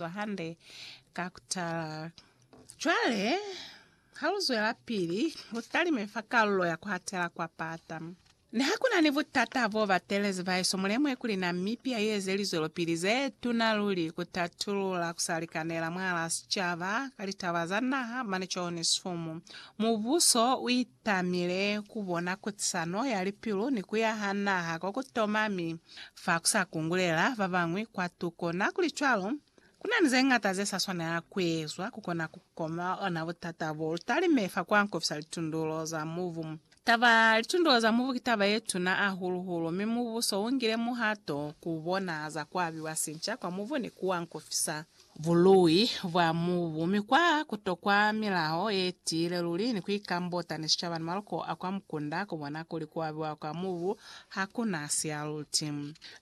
Zwa hande ka ku tala. Cwale, ha lu zwelapili, lu talime fa kalulo ya ku hatela kwa pata. Niha ku na ni butata bo batelezi, bahesu, mu lemuhe kuli Namibia i eze lizwelopili ze tuna luli ku tatulula ku sa likanela mwahal'a sicaba ka litaba za naha mane Johannesfumu. Mubuso u tamile kubona kutisano ya lipilu ni kuyaha naha kwa kutoma mi fa kusa kungulela babañwi kwa tuko. Nakulicwalo, kunani zeñata zesa swanela kuezwa kukona kukoma ona butata bo lutalime fa kuankofisa litundulo za mubu. Taba ya litundulo za mubu ki taba yetuna ahulu-hulu, mi Mubuso ungile muhato kubona za kuabiwa sinca kwa mubu ni kuankofisa bului bwa mubu, mi kwa kutokwa milao ye tiile luli ni kuikambota ni sicaba ni maloko a kwa mukunda kubona kuli kuabiwa kwa mubu ha ku na sialuti.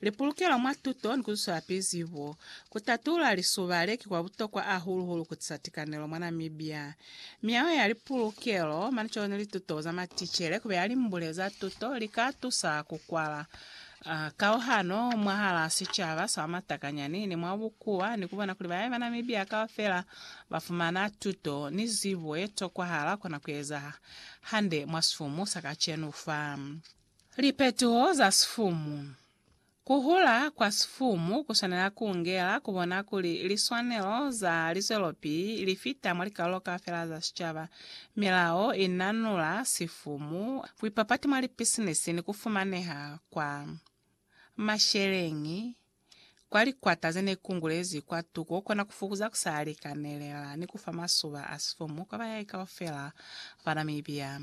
Lipulukelo mwa tuto ni kuzwisela pili zibo. Kutatulula lisuba le ki kwa butokwa ahulu hulu kutisa tikanelo mwa Namibia. Miao ya lipulukelo, manico ni lituto za maticele kubeya limbule za tuto li ka tusa kukwala A kauhano mwahalaa sicaba sa matakanyani ni mwa bukuwa ni kubona kuli bae ba Namibia kaufela ba fumana tuto ni zibo ye tokwahala kona kueza hande mwa sifumu sa kacenu fa. Lipetuho za sifumu. Kuhula kwa sifumu kuswanela kungela kubona kuli liswanelo za lizwelopili lifita mwa likalulo kaufela za sicaba Milao i nanula sifumu, buipapati mwa lipisinisi ni ku fumaneha kwa masheleñi kwa likwata ze ne kungulezi kwa tuku ku kona ku fukuza ku sa likanelela ni ku fa masuba a sifumu kwa bayai kaufela ba Namibia.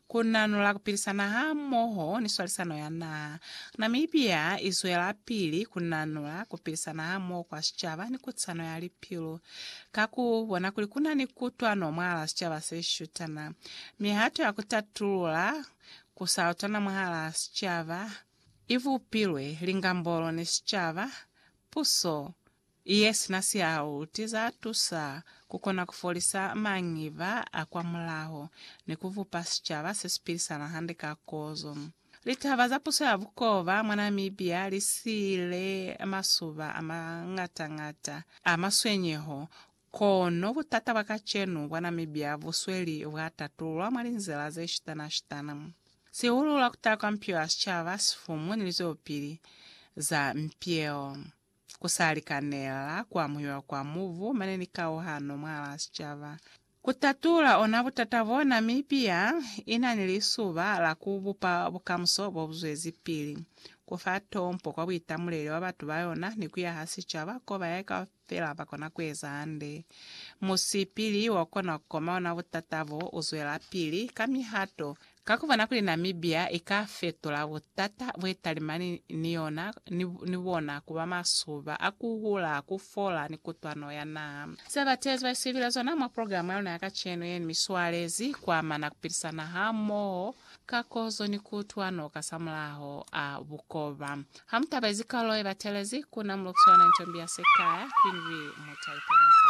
Ku nanula ku pilisana hamoho ni swalisano ya naha. Namibia i zwelapili ku nanula ku pilisana hamoho kwa sicaba ni kutisano ya lipilu. Ka ku bona kuli ku na ni kutwano mwahala sicaba se shutana, mihato ya ku tatulula ku sa utwana mwahala sicaba i bupilwe, lingambolo ni sicaba, puso, Iye sina siaho ti za tusa ku kona ku folisa mangiva a kwa mulaho ni ku vupa sicaba se si pilisana hande ka kozo. Litaba za puso ya bukoba mwa Namibia li siile masuba a mañata-ñata a maswenyeho, kono butata bwa kacenu bwa Namibia bu sweli bwa tatulwa mwa linzila ze shitana-shitana, sihulu lwa ku taha kwa mpio ya sicaba, sifumu ni lizwelopili za mpio. Ku sa likanela ku amuhelwa kwa mubu mane ni kauhano mwahal'a sicaba. Ku tatula ona butata b'o Namibia i na ni lisuba la ku bupa bukamuso bo bu zwezipili, ku fa tompo kwa buitamuleli bwa batu ba yona ni ku yaha sicaba k'o bayahi kaufela ba kona ku eza hande. Musipili wo kona ku koma ona butata bo u zwelapili ka mihato Ka ku bona kuli Namibia i ka fetula butata bwe talimani ni yona ni bona ku ba masuba a ku hula, ku fola ni kutwano ya naha. Se batezi ba isipile zona mwa progilamu ya luna ya kacenu ye ni miswalezi ku amana ku pilisana hamoho ka kozo ni kutwano kasamulaho a bukoba. Ha mu tabezi kalulo ye batelezi, ku na mulukiswa yona intombi ya sikaya, Queen Bee Mutale Tamatale.